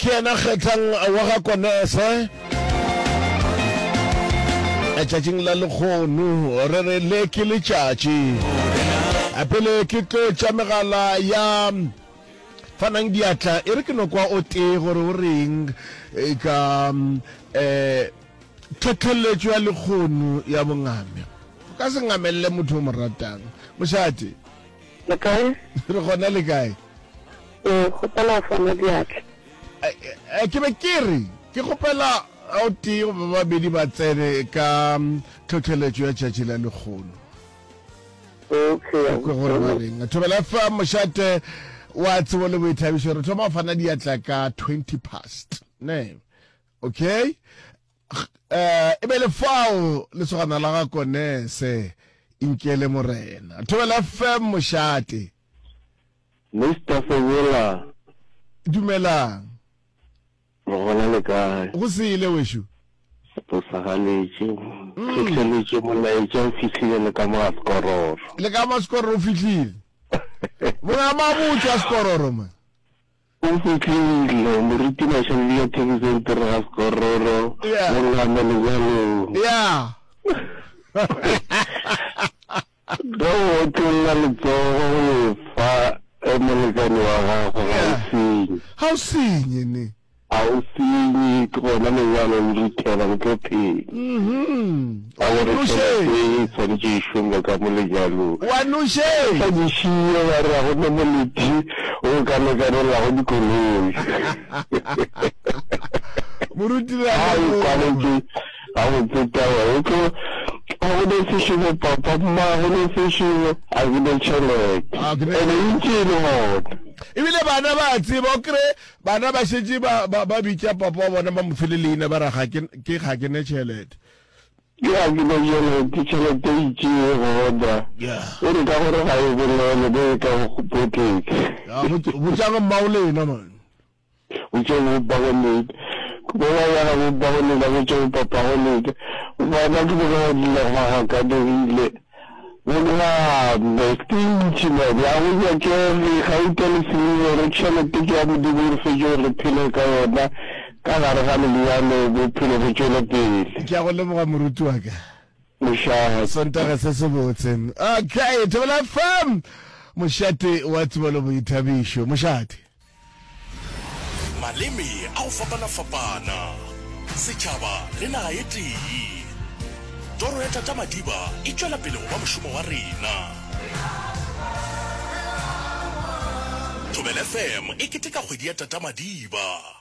Ke yena kgethang wa ga Konese. Letšatšing la lekgono re re le ke letšatši pele ke tlo tša megala ya fanang diatla e re ke no kwa o tee gore o reng ka um tlhotlheletšo ya lekgono ya bongame o ka se ngamelele motho o mo ratang mošate le kae re gona le kae Ee, kgopela fana diatla. Eh, ke be ke re ke kgopela o tee goba ba babedi ba tsene ka tlhotlheletšo ya tšatši la lekgolo Okay, a kwe gore ba reng thobela fa mošate wa tsebo le boithabišo re thoma go fana diatla ka 20 past ne okay Eh, e be le fao lesogana la ga konese inkele morena thobela fm mošate Mister Fenyola. Dumelang. Re gona le kae? Go sele wešo. Re posagaletše. Mm. Fihleletse molaetša o fihlile le ka moga sekororo. Le ka ma sekororo o fihlile. Monga mabotse a sekororo ma. O fihlile, Moruti Mashaledi ka Thekisong Pere ga Sekororo, mo Ngwame Lenyalong. Ge o otlolla letsogo go e fa molekane wa gago, ga o senye. Ga o senye, ne. Ga o senye, ke gona lenyalo le ruthela, le tlo phela. Ba go re tšhelete ye e swanetše e šongwe ka mo lenyalong. Ba sa di šiye ba re ga go na moleti o o ka lekanelago dikoloi. Ha e kwaletše gabotse taba ye. Tlo a go na seširo papa? Mma go na seširo? A ke na tšhelete. And e ntše e le gona. E bile bana ba a tseba. O kry-e bana ba šetše ba bitša papa wa bona ba mo fe le leina ba re ga ke na tšhelete. Bjaa ke be yeno ke tšhelete e itšee ye go order, o re ka gore ga e bolele be e ka go go pocket. Yaa bo botšang mma o lena man. Botše bo ba go leka. Bo ba ya ga bo ba go lena botše bo papa go leka. Bana ke bo ka go dila go ga ka dirile. Go dira boipshino bja go nyakege, gauta le silibere, tšhelete ke ya Modimo, re fetše gore re phele ka yona ka gare ga lenyalo, bophelo bo tšwele pele. Ke a go leboga moruti wa ka. Mošate. Sontaga se sebotse. Okay, Thobela FM. Mošate wa Tsibalo Boithabišo. Mošate. Maleme a go fapana-fapana, setšhaba le naga e tee. Toro ya Tata Madiba e tšwela pele go ba mošomo wa rena. Thobela FM e keteka kgwedi ya Tata Madiba.